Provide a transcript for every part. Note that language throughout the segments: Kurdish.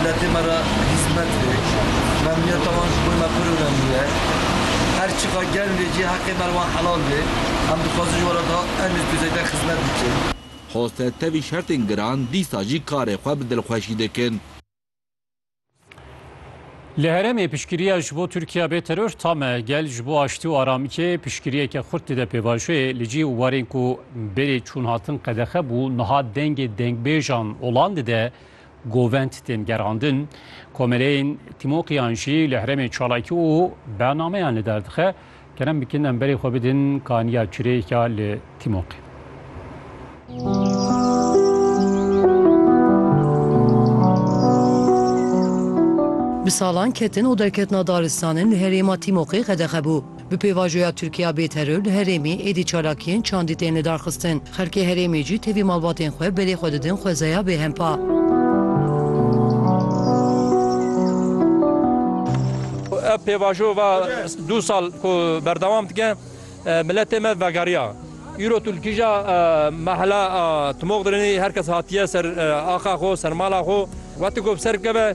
Miletê me re hîzmet bik. Memnûniyeta wan ji bo me pir onemlî ye. Her çiqa germ vê cî heqê me li wan helal bê. Em dixwazin ji were daha emîr ku zêde xizmet bikin. Hose tevî şertên giran dîsa jî karê xwe bi dilxweşî dikin. Li herêmê piştgiriya ji bo Tirkiya bê teror tame. Gel ji bo aştî û aramikê piştgiriyeke xurt dide pêvajoyê. Li cî û warên ku berê çûnhatin qedexe bû, niha dengê dengbêjan olan dide. govend tên gerandin, komeleyên tîmoqiyan jî li herêmê çalakî û bernameyan li dar dixe. Kerem bikin em berê xwe bidin kaniya çirêka li tîmoqî. Bi salan ketin û derketina daristanin li herêma tîmoqî qedexe bû. Bi pêvajoya Tirkiya bê teror li herêmê êdî çalakiyên çandî tên lidarxistin. Xelkê herêmê jî tevî malbatên xwe belê xwe didin xwezaya bêhempa. Ev pêvajo va du sal ku berdewam dike miletê me vegeriya. Îro tu li kîja mehela Timoxdrinê her kes hatiye ser axa xwe, ser mala xwe. Weti ku bi ser bikeve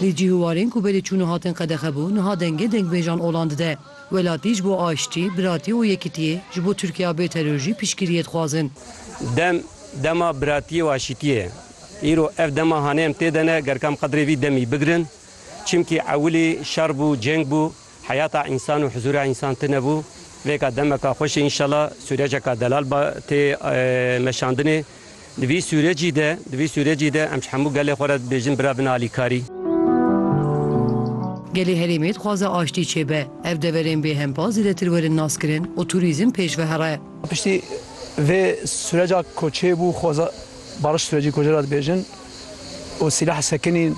Di cîhûwarên ku berê çûn û hatin qedexe bû, niha dengê dengbêjan olan dide. Welatî ji bo aştî, biratî û yekitiyê, ji bo Tirkiya bê teror jî piştgiriyê dixwazin. Dem, dema biratiyê û aşîtiyê ye. Îro ev dema hanê em tê de ne, ger kam qedrê vî demî bigirin. Çimkî ewilî şer bû, ceng bû. Heyata însan û huzûra însan tune bû. Vêka demeka xweş e înşela sûreceka delal ba tê meşandinê. Di vî sûrecî de, di vî sûrecî de em ji hemû gelê xwe re dibêjin bira bin alîkarî. Gelê herêmê dixwaze aştî çêbe. Ev deverên bêhempa zêdetir werin naskirin û tûrîzm pêş vehere. Piştî vê sûreca ku çêbû xweza bariş sûrecî kocê re dibêjin. û sîlah sekinîn,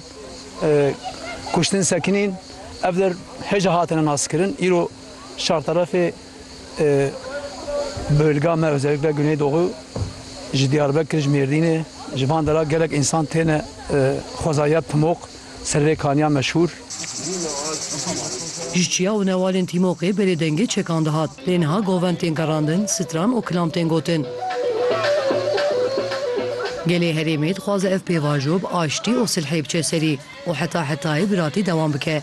kuştin sekinîn ev der hêja hatine naskirin. Îro çarterefê bölga me özellikle Güneydoğu ji Diyarbekir ji Mêrdînê ji van dera gelek însan têne xwezaya Pimok. Servê Kaniya meşhûr. Ji çiya û newalên Tîmoqê berê dengê çekan dihat. Lê niha govend tên gerandin, stran û kilam tên gotin. Gelê herêmê dixwaze ev pêvajo bi aştî û silhê biçe serî û heta hetayê biratî dewam bike.